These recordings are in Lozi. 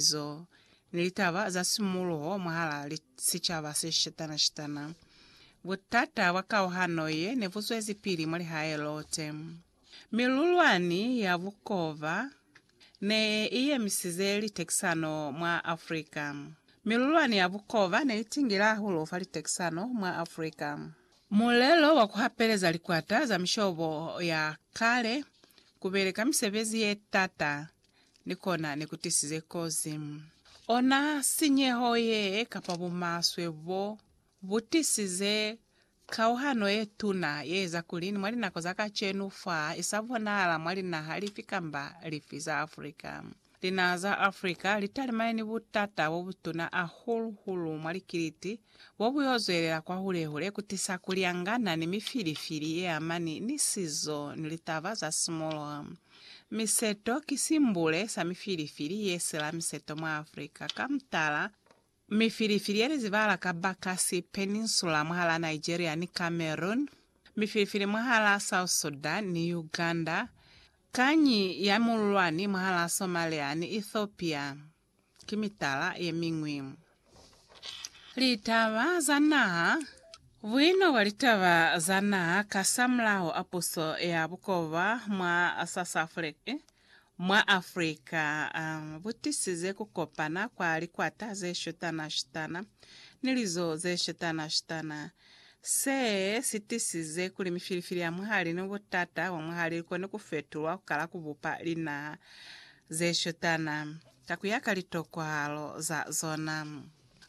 Zo ni litaba za simuluho mwahalaa li sicaba se shitana-shitana. Butata bwa kauhano ye ne bu zwezipili mwa lihae lote. Milulwani ya bukova ne i yemisize litekisano mwa Afrika. Milulwani ya bukova ne i tingile hahulu fa litekisano mwa Afrika. Mulelo wa ku hapeleza likwata za mishobo ya kale ku beleka misebezi ye tata ni kona ne ku tisize kozi. Ona sinyeho ye kapa bumaswe bo bu tisize kauhano ye tuna ye eza kuli ni mwa linako za kacenu fa i sa bonahala mwa linaha lifi kamba lifi za Africa. Linaha za Africa li talimane ni butata bo butuna hahulu-hulu mwa likiliti bo bu y'o zwelela kwahule-hule ku tisa ku lyangana ni mifilifili ye amani ni sizo ni litaba za simoloha. Miseto ki simbule sa mifilifili ye sila miseto mwa Africa, ka mutala, mifilifili ye li zibahala ka Bakassi Peninsula mwahal'a Nigeria ni Cameroon, mifilifili mwahal'a South Sudan ni Uganda, kanyi ya mululwani mwahal'a Somalia ni Ethiopia, ki mitala ye miñwi. Litaba za Naha Buino bwa litaba za naha kasamulaho a puso ya bukoba mwa Sasafrika, mwa Afrika, bu tisize ku kopana kwa likwata ze shutana-shutana ni lizo ze shutana-shutana. Se si tisize kuli mifilifili ya mwahali ni butata bwa mwahali li kone ku fetulwa ku kala ku bupa linaha ze shutana ka ku ya ka litokwahalo za zona.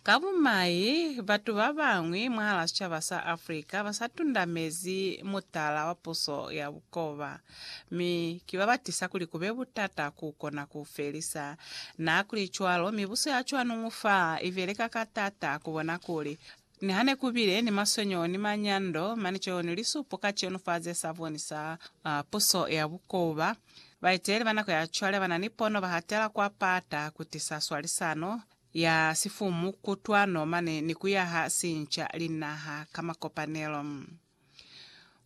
Ka bumai, batu ba bañwi mwahal'a sicaba sa Africa ba sa tundamezi mutala wa puso ya bukoba, mi ki ba ba tisa kuli ku be butata ku kona ku u felisa. N'a kuli cwalo, mibuso ya cwanuñu fa i beleka ka t'ata ku bona kuli Niha ne ku bile ni maswenyo ni manyando, mane co ni lisupo ka cenu fa ze sa bonisa puso ya bukoba. Baeteli ba nako ya cwale ba na ni pono ba hatela kwa pata ku tisa swalisano ya sifumu, kutwano, mane ni ku yaha sinca linaha ka makopanelo.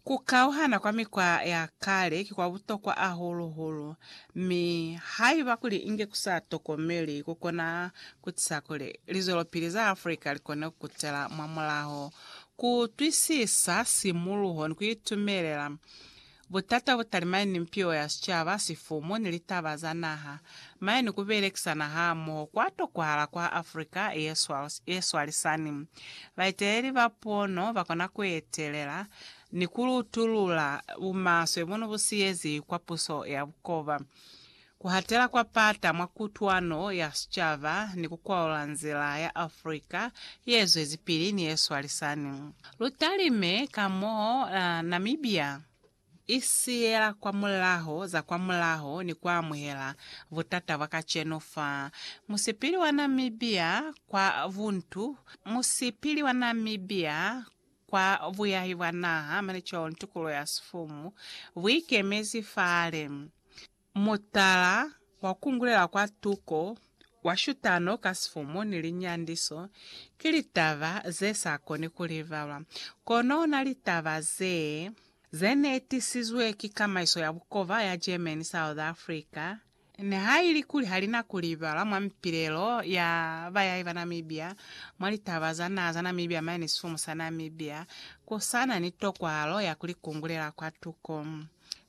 Ku kauhana kwa mikwa ya kale ki kwa butokwa ahulu-hulu, mi haiba kuli inge ku sa tokomeli ku kona ku tisa kuli lizwelopili za Africa li kone ku kutela mwamulaho ku utwisisa simuluho ni ku itumelela Butata bu talimañi ni mpiwo ya sicaba, sifumu, ni litaba za naha? Mañi ni ku belekisana hamoho kwa tokwahala kwa Africa ye swalisani? Baeteleli ba pono ba kona ku etelela ni ku lutulula bumaswe bunu bu siyeziwi kwa puso ya bukoba. Kuhatela kwa pata mwa kutwano ya sicaba ni kukwaula nzila ya Afrika yezwezipili ni yeswalisani. Lutalime ka mo Namibia isiyela kwa mulaho za kwa mulaho ni kuamuhela butata bwa kacenu fa musipili wa Namibia kwa buntu, musipili wa Namibia kwa buyahi bwa naha, mane cwalo ni tukulo ya sifumu, buikemezi fale. Mutala wa kungulela kwa tuko wa shutano ka sifumu ni linyandiso ki litaba ze sa koni ku livalwa. Kono na litaba ze, ze ne tisizwe ki kamaiso ya bukova ya German South Africa, nihailikuli ha li na ku libalwa mwa mipilelo ya bayahi ba Namibia, mwa litaba za naha za Namibia mane ni sifumu sa Namibia, ku sa na ni tokwahalo ya ku li kungulela kwa tuko.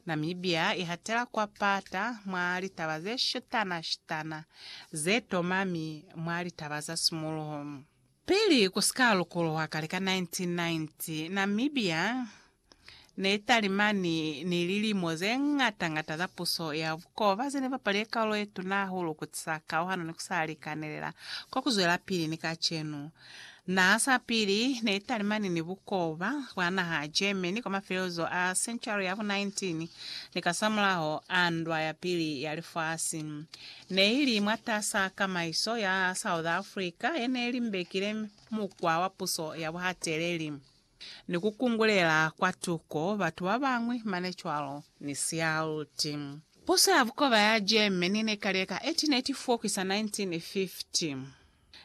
Namibia i hatela kwa pata mwa litaba ze shutana-shutana ze tomami mwa litaba za simuluho. Pili ku si ka lukuluha kale ka 1990, Namibia ne i talimani ni lilimo ze ñata-ñata za puso ya bukoba ze ne bapalize kaulo ye tuna hahulu ku tisa kauhano ni ku sa likanelela kwa ku zwelapili ni kacenu. Naha sa pili ne i talimani ni bukoba bwa naha ya Germany kwa mafelelezo a sentuari ya bu 19 ni kasamulaho a Ndwa ya Pili ya Lifasi. Ne i li mwatas'a kamaiso ya South Africa ye ne limbekile mukwa wa puso ya buhateleli ni ku kungulela kwa tuko batu ba bañwi mane cwalo ni sialuti. Puso ya bukoba ya Germany ne ka leka 18 Netifokwi sa 1950.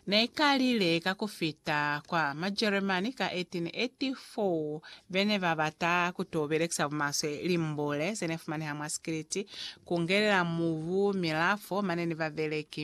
Ne ka lile ka ku fita kwa Majeremani ka 1884, be ne ba bata ku t'o belekisa bumaswe limbule ze ne fumaneha mwa sikiliti ku ngelela mubu, milafo, mane ni babeleki.